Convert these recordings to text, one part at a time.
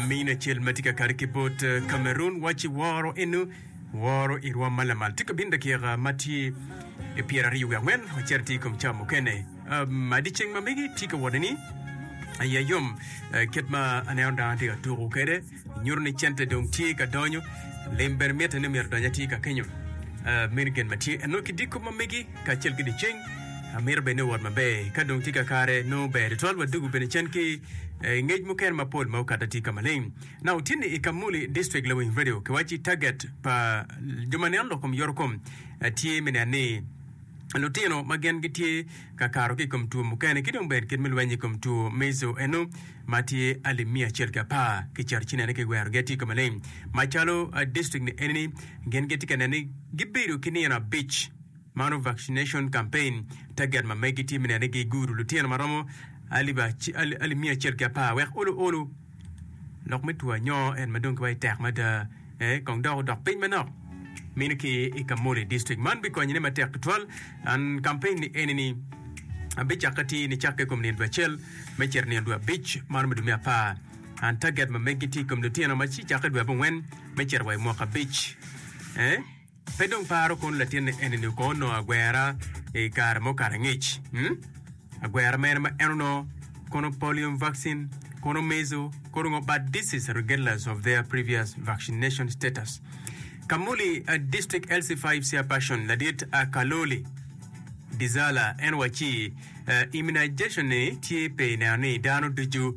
Min acel ma tye ka kare ki bot Cameroon waci woro eno woro i rwom ma lamal tye ka bino dakika ma tye i pyeraryo wiye angwen ocito tye i kom cam mukene. Um, adi ceng ma megi tye ka wot ni aya yom eh, kit ma aneno dano tye ka tuko kwede nyuto ni cente dong tye ka donyo lim bene mitte ni myero donyo atye ka kenyo Eh, meno gen ma tye eno ki diko ma megi kacel ki dyeceng. Amito bed ni owot maber. Ka dong tye kakare, nongo ber tutwal wa dugu bene cen ki eh, ngec mukene mapol ma okato atir ka maleng. Na otye ni i Kamuli District lawiny radio kiwacci target pa jo ma neno lok kom yorokom eh, tye me neno ni lutino ma gen gitye ka kato ki i kom two mukene ki dong bene kit me lweny i kom two measle eno ma tye alip miya acel ki apar ki cito ci nene ki werogi atir ka maleng macalo eh, district ni enini gen gitye ka neno ni gibedo ki nino abic Mano vaccination campaign target ma megi tye me neno ni giguru lutino ma romo alip alip miya acel ki apar wek olu olu lok me two anyoo en ma dong giwaci tek mada ee kong dok odok piny manok mini ki i Kamuli district. Man bikonyone matek tutwal. An campaign ni eni ni abicakke ti ni cakke i kom nino dwe acel me cito nino dwe abic mano me dwe me apar. An target ma megi ti i kom lutino ma ci cakke dwe abongwen me cito wa i mwaka abic ee. Pe dong paro kono latin ni eni-ni kong onongo agwera i kare mo kare angec. Hmm? Agwera mene ma en onongo? Kono polium vaccin? Kono mezo? Kono ngo but disease regardless of their previous vaccination status? Kamuli a District LC 5 Chairperson ladit a Kaloli Dizala en wacci, eh, immunization-ni tye pe ineno ni dano ducu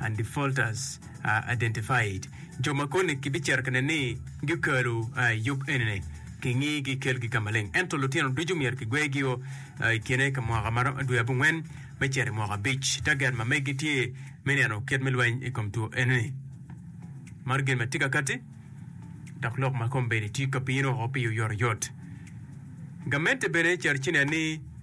Undefaulters are identified, Jo ma koni kibicito ka neni gikalo i yub enini, kingi gikelgi ka maleng. Ento lutino ducu myero kigwegio i kine ka mwaka ma romo dwe abongwen me cito i mwaka abic. Taget ma megi tye me neno kit me lweny i kom two enini. Mar gin ma tye ka kati dok lok ma kombeddi tye ka bino woko pi oyotoyot. Gamente bene cito ci nen ni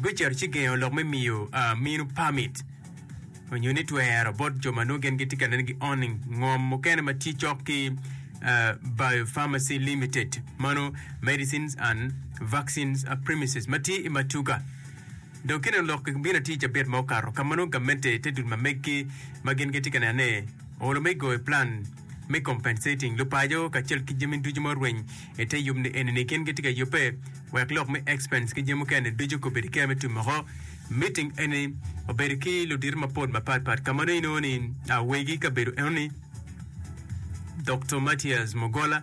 gucito ci gengo lok me miyo minu pamit onyo ni twero bot jo ma nongo gin gitye ka neno ki owning ngom mukene ma tye cok ki Biopharmacy Limited ma nongo Medicines and Vaccines Premises ma tye i Matuga. Dong ki neno lok bino atir cabit ma okato ka ma nongo gamente te dul ma meggi ma gin gitye ka neno ni olo me goyo plan me compensating lupaco kacel ki jami ducu ma orweny i te yub ni eni ni gin gitye ka yubbe wek lok me expense ki jami mukene ducu kobedo kea me tumoko meeting eni obedo ki ludito mapol mapat pat ka mano inongo ni awegi kabedo enoni Dr. Matias Mugola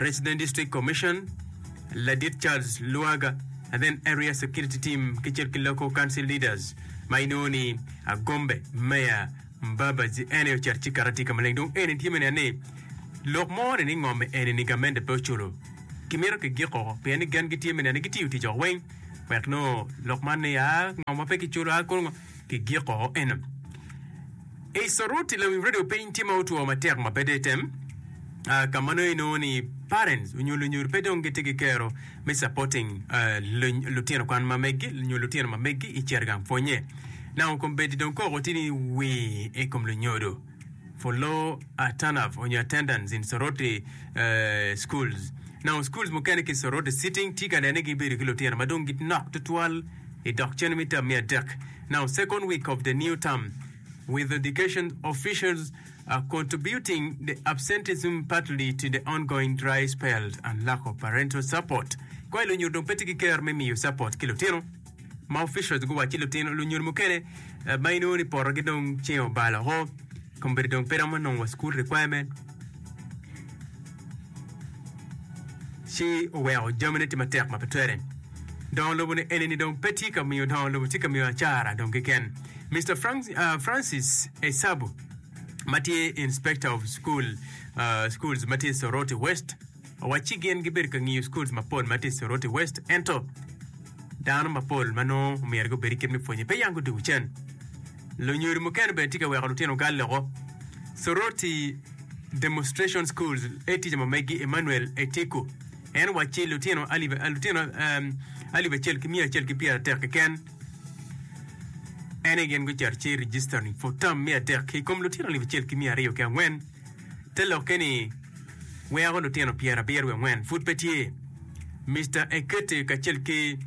Resident District Commission Ladit Charles Luaga and then Area Security Team kicel ki Local Council Leaders ma inongo ni Agombe Mayor Mbabazi en aye ocat ci karati ka maleng dong eni tye me nen ni lok mo ni ni ngome eni ni gamente pe oculo ki mito ki giko pien ni gen gitye me nen ni gitiyo tic oko weng wek nongo lok man ni aa ngom wa pe ki culo aa kulu ki giko eno i Soruti lawim radio piny tye ma otwo matek ma pe de tem aa ka ma nongo inongo ni parents onyo lunyur pe dong gitye ki kero me supporting lutino kwan ma megi nyo lutino ma megi i cere gang pwonye nango kombeddi dong koko tye ni wii i kom lunyodo for low uh, turn up on your attendance in Soroti uh, schools. Now, schools mukene ki Soroti sitting tye ka nene gibedo ki lutino ma dong ginok tutwal i dok cene me tam me adek. Now, second week of the new term, with education officials are contributing the absenteeism partly to the ongoing dry spells and lack of parental support. Koi lunyir dong pe tye ki ker me miyo support ki lutino ma officials guwaco ci lutino lunyir mukene eh, ma inongo ni poto gi dong ceng obalo ho kombedi dong pe romo nongo wa school requirement ci oweko jamine tye matek ma pe twere dongo lobo ni eni ni dong pe tye ka miyo dongo lobo tye ka miyo acara dong keken Mr. Frank, uh, Francis Esabu ma tye Inspector of Schools ma tye i Soroti West owacci gin gibedo ka ngiyo schools mapol ma tye i Soroti West ento dano mapol ma nongo omyero gubed i kit me pwonye pe yam guduku cen. Lunyodo mukene bene tye ka weko lutino gal loko. Soroti Demonstration Schools e tica ma megi Emmanuel Etiku en wacci lutino alip acel ki miya acel ki pyeratek keken en aye gin gucito ci register ni for term me adek ki kom lutino alip acel ki mia aryo ki angwen te lokke ni weko lutino pyera abiro wiye angwen pud pe tye Mister Ekete kacel ki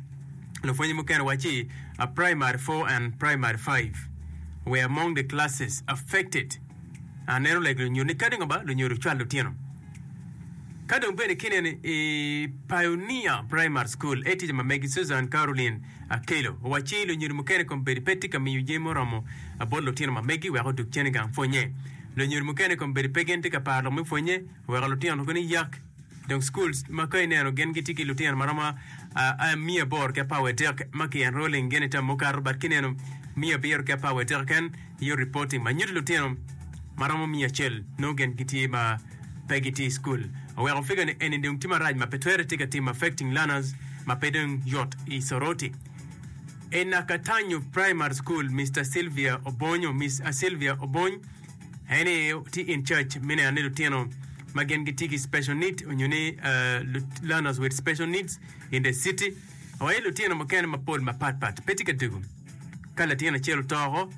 lupwonye mukene waci a primary four and primary five were among the classes affected a neno lege lunyu ni kadi ngoba lunyu lucwal lutino ka dong bene kineno i Pioneer Primary School, etica ma megi Susan Caroline Akello owacci i lunyodo mukene kombeddi pe tye ka miyo jami muromo bot lutino ma megi wek odug cen i gang pwonye. Lunyodo mukene kombeddi pe gin tye ka paro lok me pwonye oweko lutino koni yak dong schools ma ka ineno gin gitye ki lutino ma romo miya aboro ki apar wa dek ma ki enrolling gin i term mukato but kineno miya abiro ki apar wa dek keken Iyo reporting ma nyuto lutino ma romo miya acel nongo gen gitye ma pe gitye i school oweko figure ni eni dong tye marac ma pe twere tye ka timo affecting learners ma pe dong yot i Soroti. I Nakatanyu Primary School Mister Sylvia Obonyo, Miss Sylvia Obony, en ni tye in charge me neno ni lutino ma gen gitye ki special need onyo ni learners with special needs in the city owaco ni lutino mukene mapol mapat pat pe tye ka dugu Ka latin acel otoko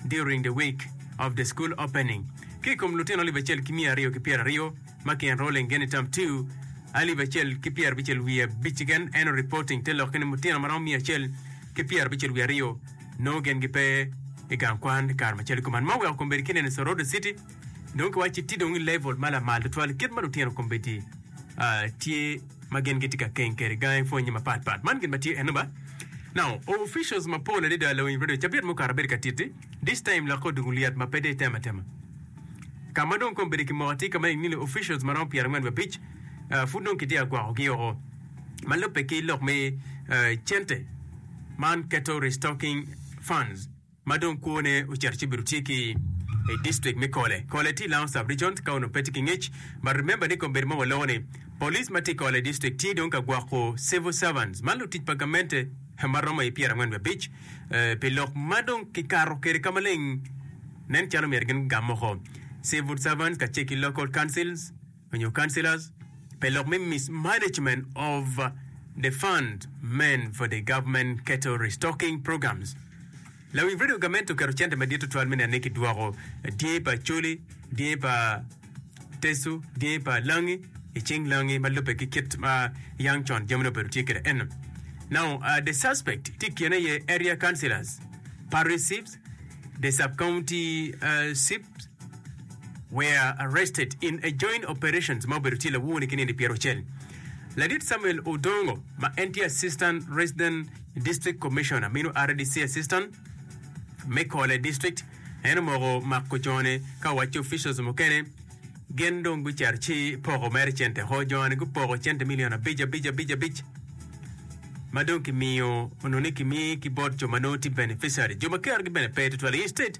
during the week of the school opening, ki i kom lutino alip acel ki miya aryo ki pyeraryo ma ki enrolling gen i term two, alip acel ki pyerabicel wiye abic keken annual reporting te lokke ni lutino ma romo miya acel ki pyerabicel wiye aryo nongo gen gipe i gang kwan kare macalo kuman. Ma oweko kome bedo kineno i Soroti City. Dong kiwacci tye dong i level ma lamal tutwal kit ma lutino kombeddi ah, tye ma gin gitye ka keng kwede gangi pwonye mapat pat. Man gin ma tye eno ba. Now, officials mapol adada lawiny radio cabit mukato abedo ka titi. This time lokke odong olyet ma pe dong itemo atema. Ka ma dong kombeddi ki moko tye ka ma ineno ni officials ma romo pyerangwen wa abic ah, pud dong kitye ka gwakogi oko ma lubbe ki lok me ah, cente man keto restocking funds. ma dong kwone ocito ci obedo tye ki i district me Kole. Kole tye i Lounge Sub Region ka onongo pe tye ki ngec but remember ni kombedo ma waloko ni Police ma tye i Kole District tye dong ka gwoko Civil Servants man lutic pa gamente ma romo i pyera angwen wiye abic pi lok ma dong ki kato kwede ka maleng nen calo myero gin gam moko Civil Servants kacel ki Local Councils onyo councillors pe lok me mismanagement of the fund meant for the government cattle restocking programs. Lawing Radio Gamente oketo cente madit tutwal me neno ni kidwoko dyangi pa Acholi, dyangi pa Teso, dyangi pa Langi i cing Langi ma lubbe ki kit ma yang con jamine obedo tye kwede eno. Now, uh, the suspect tye i kine aye area councillors, parish chiefs, the sub-county uh, chief, were arrested in a joint operations ma obedo tye lawone ki nino pyero acel. Ladit Samuel Odongo ma en tye Assistant Resident District Commissioner mino RDC Assistant me Kole District en omoko mako jone ka wacce officials mukene gin dong gucito ci poko mere cente ho jone gupoko cente milion abic abic abic abic ma dong kimiyo onongo ni kimi ki bot jo ma nongo tye beneficiary jo ma kerogi bene pe tutwal instead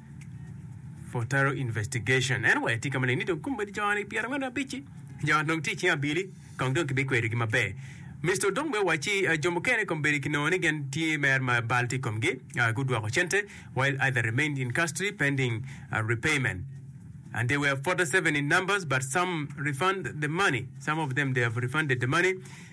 for thorough investigation. Anyway, tye ka maleng ni dong kumbe joni pyera ngwen abic-ci joni dong tye cing abili kong dong kibikwedogi maber. Mister Odong bene owacci ah, jo mukene kong bedo kinongo ni gen tye mer ma bal tye i komgi, ah, gudwoko cente while other remained in custody pending ah, repayment. And they were 47 in numbers, but some refund the money. Some of them they have refunded the money.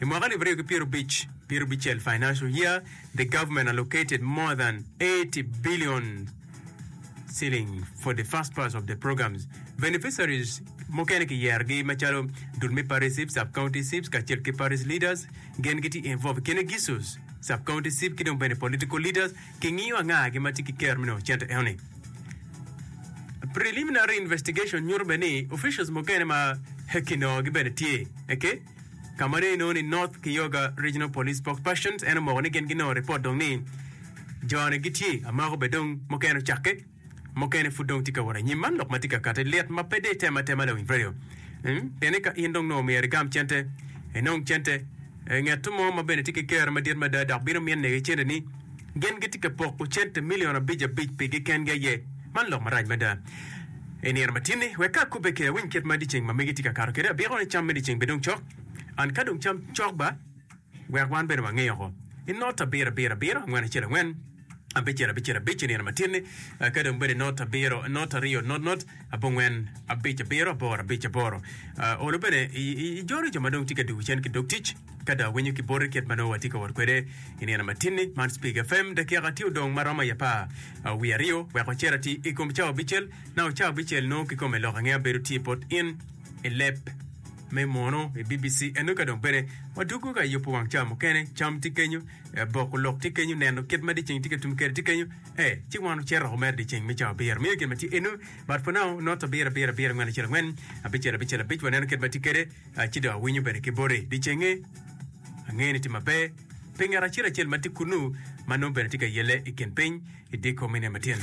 I mwaka alip aryo ki pyero abic pyero abicel financial year, the government allocated more than 80 billion shilling for the first phase of the programs. Beneficiaries mukene kiyerogi macalo dul me parish chiefs, sub-county chiefs kacel ki parish leaders gin gitye involved i kine gisos sub-county chief ki dong bene political leaders kingiyo anga gi ma tye ki kero me nongo cente enoni. Preliminary investigation nyuto bene ni officials mukene ma kinongogi bene tye. Okay? Ka ma dong inongo ni North Kioga Regional Police Spokesperson en omoko ni gin ginongo ripot dong ni jone gitye amako bed dong mukene ocakke mukene pud dong tye ka wot anyim. Man lok ma tye ka kati lit ma pe de item atema lawiny radio. Mm, Pienne ka in dong nongo myero igam cente, inong cente, eh, ngeto mo ma bene tye ki kero madit mada dok bino minne ki cente ni Gin gitye ka poko cente milion abic abic pigi kengi aye. Man lok marac mada! I nino ma tye-ni, wek ka akobbe kede awiny kit ma dyeceng ma megi tye ka kato kwede, abiko ni cam me dyeceng bidong cok. And ka dong cam cok ba, wek wan bene wange oko. I not abiro abiro abiro angwen acel angwen, abicel abicel abic i nino ma tye-ni, ka dong bene i not abiro not aryo not not abongwen abic abiro aboro abic aboro. Olo bene ijolo jo ma dong tye ka dwogo cen ki dog tic. Ka dong awinyo ki boti kit ma nongo watye ka wot kwede i nino matin-ni, man Speak FM, dakika tye odong ma romo i apar wiye aryo wek wacer atir i kom cawa abicel. Naka cawa abicel nongo kikome lok ange abedo tye bot in i leb me mono i BBC eno. Ka dong bene wadwogo ka i yubo wang cawa mukene, cam tye kenyo, eh, boko lok tye kenyo, neno kit ma dyeceng tye ka tum kwede tye kenyo, eh, ci wan wacito dok wamero dyeceng me cawa abiro. Miyo gin ma tye eno, but for now, not abiro, abiro, abiro, angwen, acel, angwen, abicel, abicel, abic, waneno kit ma tye kwede. a, ci dong awinyo bene ki boti dyecenge. Angeyo ni tye maber pi ngat acel acel ma tye kunnu ma nongo bene tye ka yelle i kin piny i diko me niang matino.